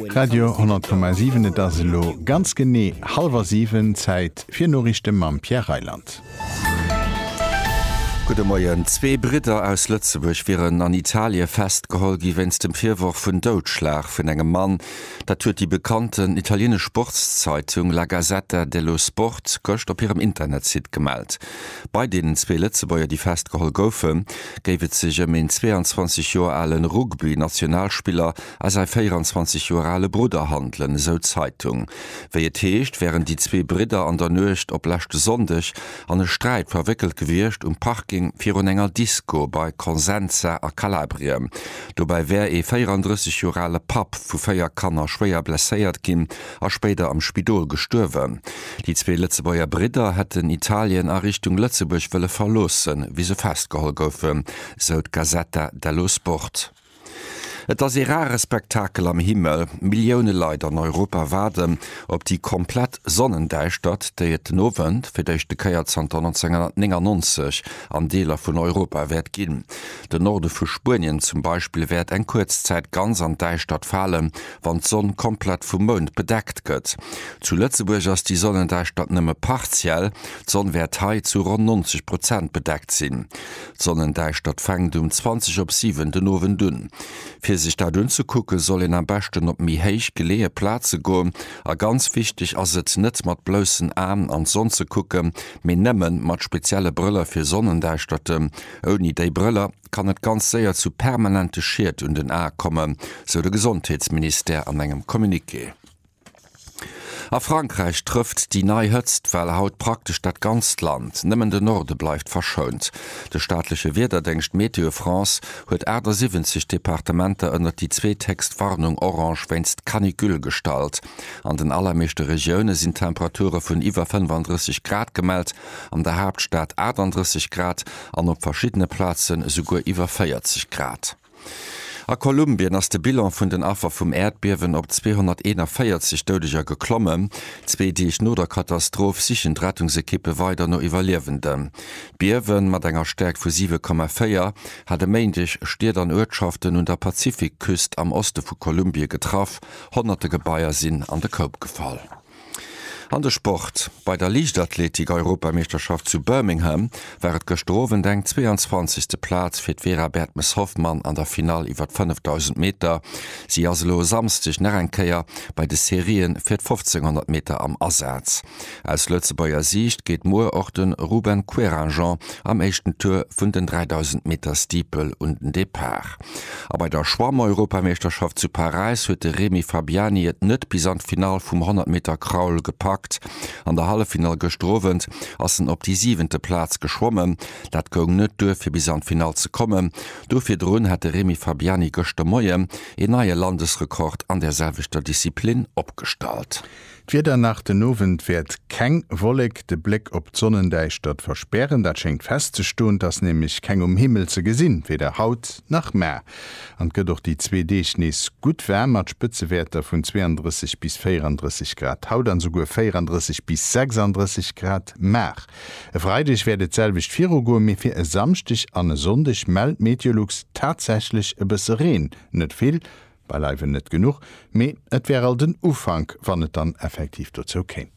Radio 10,7 Et ass elo ganz genee hallwer 7, Zäit fir Noriichte mam Pierre Reyland. Gudde Moien. Zwee Bridder aus Lëtzebuerg wieren an Italie festgeholl gi wéinst dem Virworf vun Doudschlag vun engem Mann. Dat huet déi bekannten italienesch Sportszeitung La Gazzetta dello Sport gëscht op hirem Internetsite gemellt. Bei deenen zwee Lëtzebuerger, déi festgeholl goufe, géif et sech ëm een 22 Joer ale Rugby-Nationalspiller a säi 24 Joer ale Brudder handelen, esou d'Zeitung. Wéi et heescht, wären déi zwee Bridder an der Nuecht op leschte Sonndeg an e Sträit verwéckelt gewiescht um Parking virun enger Disco bei Consenza a Kalabrien. Dobäi wär ee 34 Joer ale Papp vu véier Kanner schwéier blesséiert ginn a spéider am Spidol gestuerwen. Déi zwee Lëtzebuerger Bridder hätten Italien a Richtung Lëtzebuerg wëlle verloossen, wéi se festgeholl goufen, sou d'Gazzetta dello Sport. Et ass ee rare Spektakel am Himmel. Millioune Leit an Europa waarden op déi komplett Sonnendäischtert, déi et den Owend, fir d'éischte Kéier zanter 1999, an Deeler vun Europa wäert ginn. Den Norde vu Spuenien zum Beispill wäert eng kuerz Zäit ganz an d'Däischtert falen, wann d'Sonn komplett vum Mound bedeckt gëtt. Zu Lëtzebuerg ass déi Sonnendäischtert nëmme partiell, d'Sonn wäert hei zu ronn 90 Prozent bedeckt sinn. D'Sonnendäischtert fänkt um 20 op 7 den Owend un. Fir sech dat unzekucken, soll een am beschten op méi héich geleeë Plaze goen a ganz wichteg ass et, net mat bloussen Aen an d'Sonn ze kucken, mee nëmmen mat spezielle Brëller fir Sonnendäischterten. Ouni déi Brëller kann et ganz séier zu permanente Schied un den Ae kommen, sou de Gesondheetsministère an engem Communiqué. A Frankräich trëfft déi nei Hëtztwell haut praktesch dat ganzt Land, nëmmen de Norde bleift verschount. De staatleche Wiederdéngscht Météo France huet 78 Departementer ënnert déi zweethéchst Warnung orange wéinst Canicule gestallt. An den allermeeschte Regioune sinn Temperature vun iwwer 35 Grad gemellt, an der Haaptstad 38 Grad an op verschiddene Plazen esouguer iwwer 40 Grad. A Kolumbien ass de Bilan vun den Affer vum Äerdbiewen op 241 Doudeger geklommen. Zwee Deeg no der Katastroph sichen d'Rettungsekippe weider no Iwwerliewenden. D'Biewe mat enger Stäerkt vu 7,4 hat e Méindeg Stied an Uertschaften un der Pazifikküst am Oste vu Kolumbie getraff, honnerte Gebaier sinn an de Koup gefall. An de Sport, Bei der Liichtathletik-Europameeschterschaft zu Birmingham war et gëschter Owend eng 22. Plaz fir d'Vera Bertmes-Hoffmann an der Finall iwwer d'Fënnefdausend Meter. Si ass elo e Samsdeg nach eng Kéier bei de Serië fir d'Fofzénghonnert Meter am Asaz. Aus Lëtzebuerger Siicht geet muer och de Ruben Querinjean am éischten Tour vun den 3000 Meter Steeple un den Depart. A bei der Schwammeuropameeschterschaft zu Paräis huet de Remi Fabiani et net bis an d'Finall vum 100 Meter Kraul gepackt. An der Halleffinall gëschter Owend ass en op déi siwente Plaz geschwommen. Dat goung net duer fir bis an d'Finall ze kommen. Do virdrun hat de Remi Fabiani gëschter Moien een neie Landesrekord an där selwechter Disziplin opgestallt. D'Wieder nach, Den Owend wäert keng Wollek de Bléck op d'Sonnendäischtert verspären. Dat schéngt festzestoen, 't ass nämlech keng um Himmel ze gesinn, weder haut nach mar. An 't gëtt och déi zwee Deeg nees gutt waarm mat Spëtzewäerter vun 32 bis 34 Grad haut an esouguer 34 bis 36 Grad mar. E Freideg wäert et d'selwecht virugoen, mee fir e Samschdeg an e Sonndeg mellt Meteolux tatsächlech e bësse Reen, net vill, Beileiwen net genuch, mee et wär alt en Ufank, wann et dann effektiv dozou kéim.